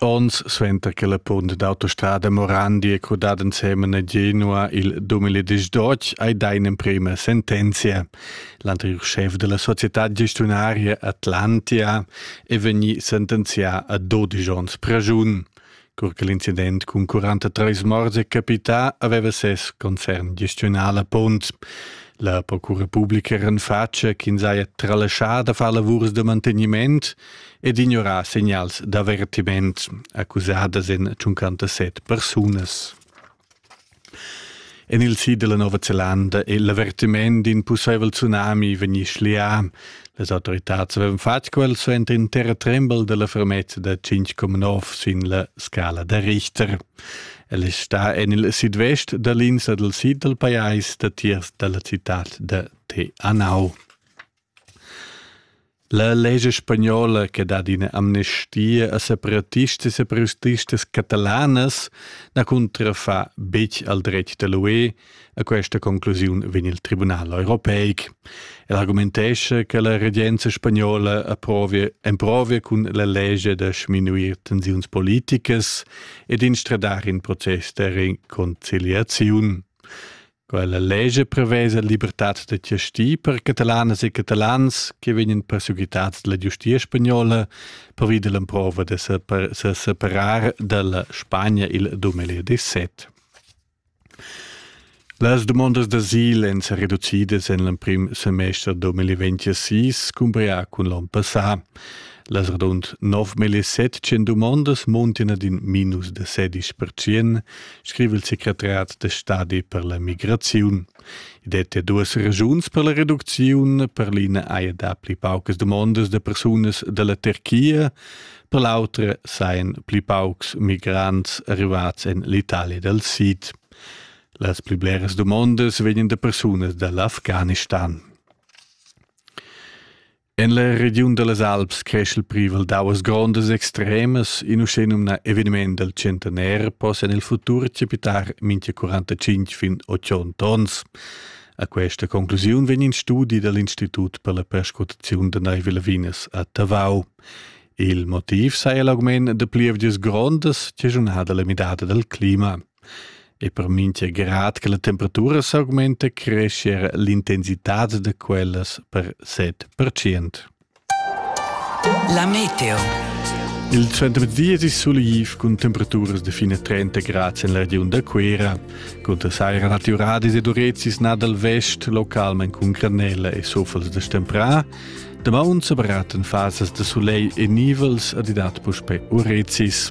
Ons suenter che la punt d'autostrada Morandi è crudada ensemen a Genua il 2018 hai dà in'emprima sentenzia. L'anterior chef della società gestiunaria Atlantia è vegnì sentenzià a 12 onns pragiun. Cur che l'incident cun 43 morts è capità, aveva ses concern gestionà la punt. La procura pubblica renfatscha ch'ins haja tralascià da far lavurs da manteniment, ed ignorar segnals d'avertiment accusadas en 57 persunas. En il sid della Nova Zelanda è l'avertiment d'in pussaivel tsunami vegnì schlià. Les autoritads avevano fatto quel suenter in terra tremble della fermezza da 5,9 sin la scala da Richter. El sta en il sidvest da linsa del sid del pajais datiers dalla città de Te Anau. La lescha spagnola che dat ina amnestia a separatistas e protestistas catalanas na cuntrafa betg al dretg da l'UE. A questa conclusiun vegn il Tribunal europeic. El argumentescha che la regenza spagnola approvia, emprovia cun la lescha da sminuir tensiuns politicas e d'instradar in process da reconciliaziun. Quella lescha prevesa libertad da giastir per catalanas e catalans che vegnan perseguitads dalla giustia spagnola pervi dall'emprova da se separar dalla Spagna il 2017. Las dumondas d'asil èn sa reducidas en l'emprim semester 2026 cumparà cun l'onn passà. Las radund 9.700 dumondas muntin ad in minus da 16%, scriva il secretariat da stadi per la migraziun. I detta duas ragiuns per la reducziun. Per l'ina haja dapli paucas dumondas da persunas da la Turchia, per l'autra sajan pli paucs migrants arrivats en l'Italia dal Sid. Las pli bleras dumondas vegnan da persunas dall'Afghanistan. En la regiun da las Alps cresch il privel d'auas grondas extremas, in uschenumnà eveniment dal centenaire possa en il futur capitar mintga 45 fin 80 onns. A questa conclusiun vegn in studi dal Institut per la perscrutaziun da naiv lavinas a Tavau. Il motiv saja l'augment da plievgias grondas che junhada la midada dal clima. E per mintga grad che la temperatura s'augmenta creschia era l'intensitad da quellas per set pertschient. La meteo. Il centemezdi è sulaiv cun temperaturas da fine 30 grad en la regiun da Cuera. Con da saira naturadis ed urezis nà dal vest, localment cun granella e sofels da stemprà. Damaun sa baratten fasas da sulegl e nivels ad idat puspè urezis.